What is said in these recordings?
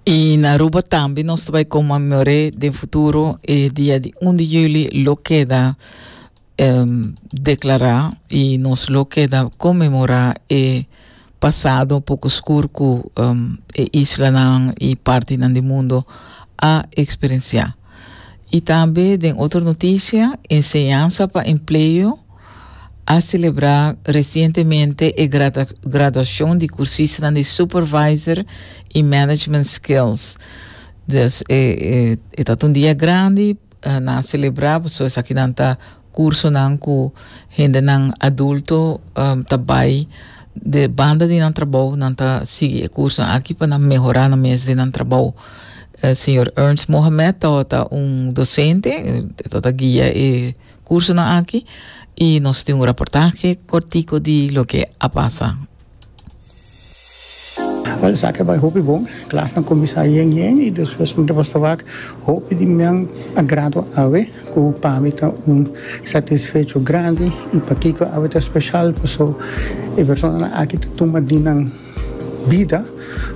I na Aruba tambe nos ta bai conmemoré den futuro e dia di un di juli lo keda um, declará i nos lo keda conmemorá e pasado poco scur cu um, e islanan i partinan di mundo a experienciá. Y tambe den otro noticia, Enseñansa pa Empleo a celebra recientemente e graduacion di cursistanan di Supervisor y Management Skills. Dus e ta un dia grandi, nan a celebra, pasobra esaki nan ta cursonan cu hendenan adulto ta bay de banda di nan trabou, nan ta sigui e cursonan aki pa nan mehora nan mes den nan trabou. E señor Ernst Mohamed tabata un docente, e tabata guia e cursonan aki y nos tin un reportahe cortico di loke a pasa. Wel esaki a bai hopi bon. Klasnan kuminsá yen yen i despues un depas ta wak hopi di nan a gradua awe ku pa mi ta un satisfecho grandi. I pakiko awe ta speshal? Pasó e personanan aki ta tuma di nan bida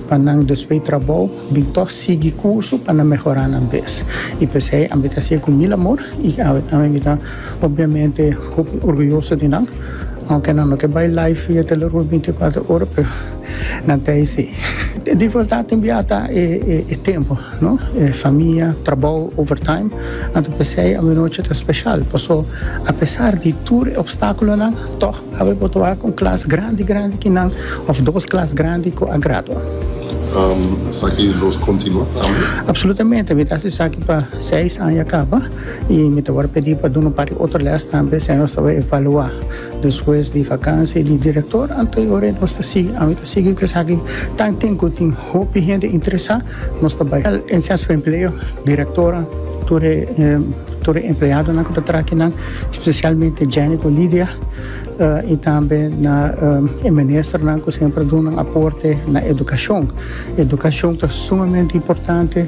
pa nan despues di trabou bin tòg sigui kurso pa nan mehorá nan bes. I p'esei ami ta hasié ku mil amor i awe tambe mi ta. Obviamente hopi orguyoso di nan, aunke nan no ke bai live e telerun binticuater ora pero nan ta eysi. Di verdad tin bia ta e tempo no, e famia, trabou, overtime, anto p'esey awanochi ta special, paso apesar di tur e obstaculonan tog awe bo ta wak un klas grandi grandi ki nan of dos klas grandi ku a gradua. Esaki lo continua tambe? Absolutamente, mi ta haci esaki pa seis aña caba. I mi ta wòrdu pedí pa duna un par di otro lès tambe siña nos ta bai evaluá despues di vakansia di direktor anterior i nos ta sigui. Ami ta sigui ku esaki tan tin ku tin hopi hende interesá. Nos ta bai el en Centro pa Empleo, direktornan, tur e tur e empleadonan ku ta traha aki nan, spesialmente Jenny ku Lidia i tambe na e ministernan ku semper a duna aporte na edukashon. Edukashon ta sumamente importante.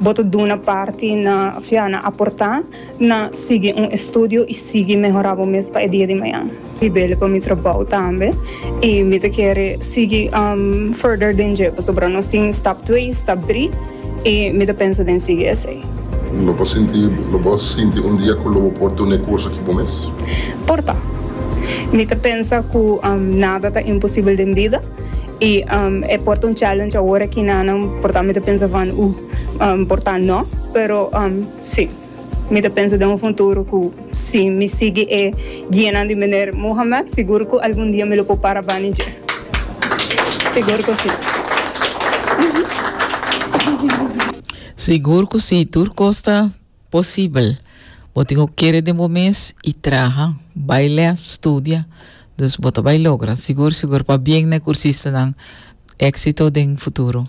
Bo ta duna parti na fia na aportá na sigui un estudio i sigui mehorá bo mes pa e dia di mañan. Mi bele pa mi trabou tambe i mi ta kere sigui further den dje pasobra nos tin stap twee, stap dri i mi ta pensa den sigui esei. Lo bo sinti lo bo sinti un dia ku lo bo por duna e kurso ki bo mes? Por ta. Mi ta pensa ku nada ta imposibel den bida. I e por ta un challenge awor aki na nan por ta mi ta pensa van uh por ta no pero si mi ta pensa den un futuro ku si mi sigui e guianan di Meneer Mohamed sigur ku algun dia mi lo por para bani dje sigur ku si. Sigur ku si tur kos ta. Posibel. Bo tin ku kere den bo mes i traha, bai lè, studia. Dus bo ta bai logra, sigur sigur. Pabien na e kursistanan. Éksito den futuro.